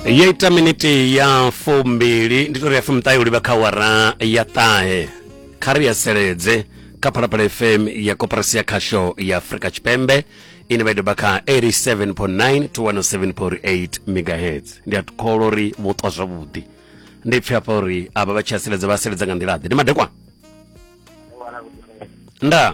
yo ita miniti ya fumbili ndi tori ya fumṱahe u livha kha wara ya ṱahe kha ri ya seledze kha phalaphala fm ya koporasi ya khasho ya afrika tshipembe ine vha i doba kha 87.9 to 107.8 megahertz ndi a kholo uri vho ṱwa zwavhuḓi ndi pfhi hafha uri avha vha tshi a seledza vha seledza nga nḓila ḓe ndi madekwana nda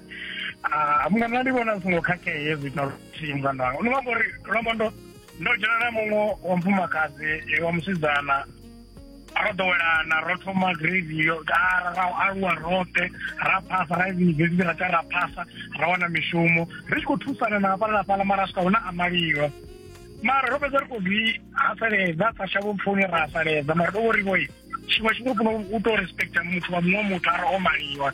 ah, mungana ndi vhona zwi songo khakhea hezwi ita luthihi mungana wanga ndi nga amba uri ndo amba ndo ndo dzhena na muṅwe wa mufumakadzi eh, wa musidzana ro ḓowelana ro thoma grade yo ra ra aluwa roṱhe ra phasa ra yunivesithi ra tsa ra phasa ra wana mishumo ri tshi khou thusana na hafhala na fhala mara swika hune a maliwa mara ro fhedza ri khou zwi haseledza sa shavho pfuni ra haseledza mara ndo vho ri vhoi tshiṅwe tshifhinga funa u to respecta muthu wa muṅwe muthu ara o maliwa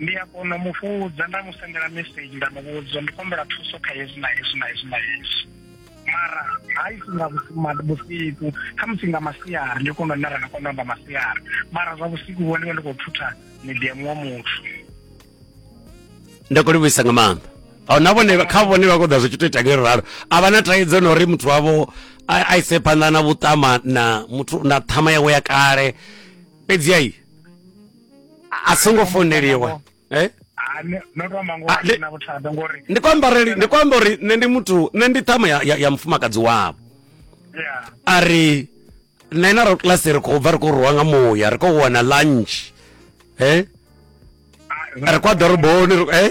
ndi a kona u mu fhudza nda mu sendela message nda mu vhudza ndi kombela thuso kha hezwi na hezwi na hezwi na hezwi mara haisi nga vhusiku khamusi nga masiari ndi kona nara nga kona amba masiari mara zwa vhusiku vho ndivha ndi khou thutha midiamu wa muthu ndi khou livhuisa nga maanḓa na vhone kha vhone vha koḓa zwi tshi to ita ngeri ralo a vha na thaidzo na uri muthu wavho a ise phanḓa na vhuṱama na muthu na ṱhama yawe ya kale fhedzi ai a- a songo founeliwa eh? Ah, ni- no to amba ngoho Ah, a thi le- na vhuthada ngori ndi khou amba uri ndi khou amba uri nṋe ndi muthu nṋe ndi ṱhama ya, ya, ya mufumakadzi wavho ya a ri nṋe na ro class ri khou bva ri khou rwiwa nga muya ri khou wana lunch eh? Ah, ri khou ya ḓoroboni ri- eh?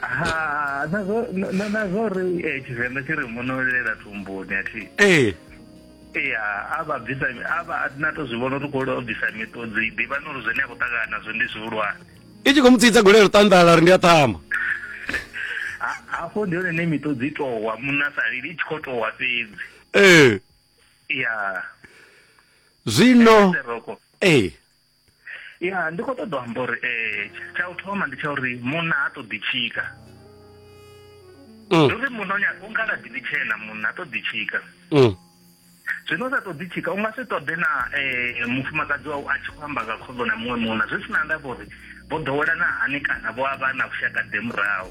ha na zwo na na zwo ri eh, tshivenḓa tshi ri munolela thumbuni a thi ee ya a vha bvisa a vha na to zwi vhona uri khou lwa u bvisa miṱodzi ḓivha na uri zwine a khou ṱangana nazwo ndi zwihulwane i tshi khou mu tsitsa golelo ṱanḓala ri ndi a ṱhama Ha- hafho ndi hone ne miṱodzi i towa munna sa lili i tshi khou towa fhedzi ee ya zwino seroko ee ya ndi khou ṱoḓa u amba uri um tsha u thoma ndi tsha uri munna ha ṱoḓi tshika mm. ndi uri munna u nga laḓi ḽi tshena munna ha ṱoḓi tshika mm. zwino u sa ṱoḓi tshika u nga si ṱoḓe na um mufumakadzi wau a tshi khou amba nga khoḓo na muṅwe munna zwi si na ndavha uri vho ḓowelana hani kana vho a vha na vhushakade murahu